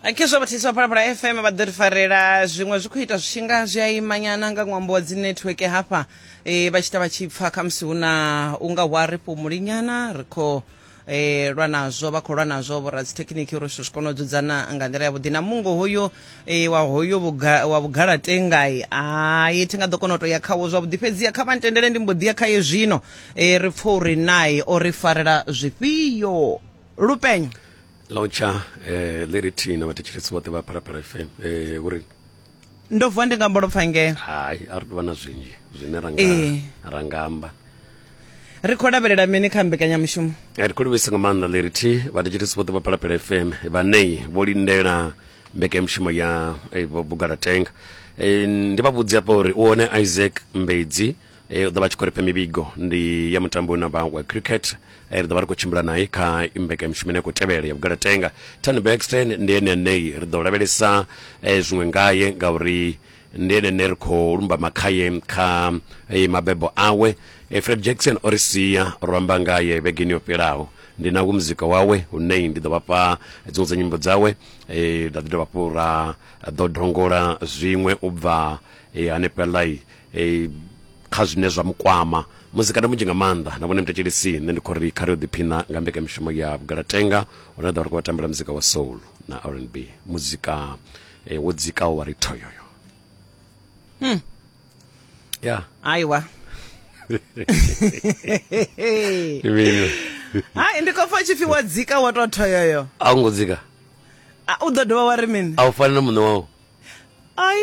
akhizwa vhathiswa phalaphala fm vha ḓo ri farela zwiṅwe zwi khou ita zwi tshinga zwi a imanyana nga ṅwambo wa dzi netiweke hafha eh, vha tshi ita vha tshi pfa khamusi hu na u nga hu a ri pumulinyana ri khou eh, lwa nazwo vha khou lwa nazwo vhoradzithekhiniki uri zwithu zwi kone u dzudzana nga nḓila yavhuḓi na mungo hoyo eh, wa hoyo vhuga- wa vhugalatengai ai thi nga ḓo kona u to ya khawo zwavhuḓi fhedziha kha vha ntendele ndi mbo ḓi ya khaye zwino eh, ri pfhe uri nae o ri farela zwifhio lupenyo lotsha eh lerithi na vhathetshesi vhoṱhe vha pharapara fm eh uri ndo vuwa ndi nga mbolo pfa ngeo hai a ri tovha na zwinzhi zwine ra nga Eh. ra nga amba ri khou lavhelela mini kha mbekanyamushumo Eh, ri khou livhisa nga maanḓa lerithi vhathetshesi vhoṱhe vha pharapara fm vhanei vho lindela mbekanyamushumo ya eh, vho bugalatenga Eh, ndi vha vhudzi hafha uri u hone isaac mbedzi e u ḓo vha tshi khou ri fhe mivhigo ndi ya mutambo une vha wa cricket e ri ḓo vha ri khou tshimbila naye kha imbekamishumo ine ya khou tevhela ya vhugalatenga tony baxter ndi ene aneyi ri ḓo lavhelesa e, zwiṅwe ngaye ngauri ndi ene ne ri khou lumba makhaye kha e, mabebo awe e, fred jackson o ri sia ro amba ngaye vhegeni yo fhelaho ndi na muzika wawe une ndi ḓo vhafha dziṅwe dza nyimbo dzawe e, nda ḓi dovha hafhu ra ḓo dongola zwiṅwe u bva e, hanefhaḽai e, kha zwine zwa mukwama muzika ndi munzhi nga maanḓa na vhone mutetshelisi nṋe ndi khou ri kha ri o ḓiphina nga mbekamishumo ya vhugalatenga hune ḓa ri khou tambela muzika wa soul na r n b muzika e, wo dzikaho wa ri thoyoyo hmm. ya aiwa hai ndi khou pfa u tshi pfi wa dzika wa tou thoyoyo a u ngo dzika u ḓo dovha wa ri mini a u fani na muṋe wau ai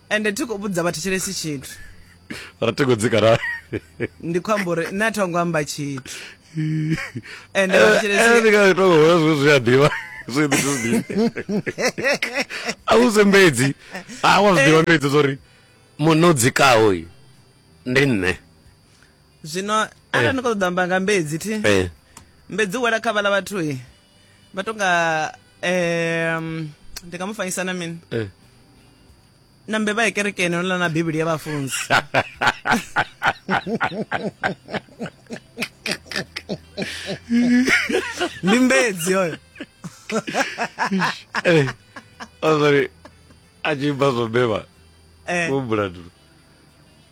ende thi khou vhudza vhathetshelesi tshithu ra tengo dzika ra ndi khou amba uri nṋe a tho ngo amba tshithu ende eh, vhathetshelesi eh, ndi nga to hore zwi zwi a ḓivha zwi ndi zwi ḓivha a u se mbedzi a wa zwi ḓivha mbedzi zori muno dzikaho yi ndi nṋe zwino arali eh. ni khou ṱoḓa amba nga mbedzi thi mbedzi wela kha vhala vhathu yi vha tonga um ndi nga mu fanyisa na mini eh. na mbeva ye kerekeni no la na biblia ya vhafunzi ndi mbedzi oyo eh, a tshi bva zwo beba eh. humbula dulu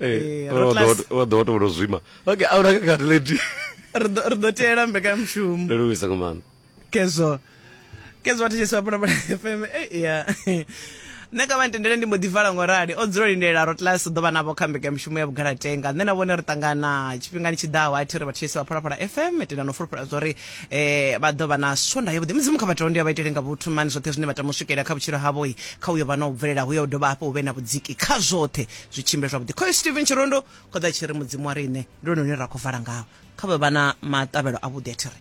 eh, eh, u a ḓo to vhona zwima okay a una kakati leti ri ḓo teela mbekanyamushumo ndo luvisa nga maanḓa kezwo kezwo thi tshisiwa pona pona fm eh, ya nṋe ka vha ntendele ndi mbo ḓi vala ngo rali o dzula lindela rotlas ḓo vha navho kha mbekanyamushumo ya vhugalatenga nṋe na vhone ri ṱangana tshifhingani tshi ḓaho a thi ri vha tshisiwa phalaphala fm tenda no fulufhela zwa uri eh vha ḓo vha na swonda yavhuḓi mudzimu kha vhatendi a vha itele nga vhuthu mani zwoṱhe zwine vha tama u swikelela kha vhutshilo havho i kha uyo vha na u bvelela huya u dovha hafho hu vhe na vhudziki kha zwoṱhe zwi tshimbile zwavhuḓi khoyo stephen tshirondo kho ḓa tshi ri mudzimu wa riṋe ndi lone lune ra khou vala ngawo kha vha vha na maṱavhelo avhuḓi a thi ri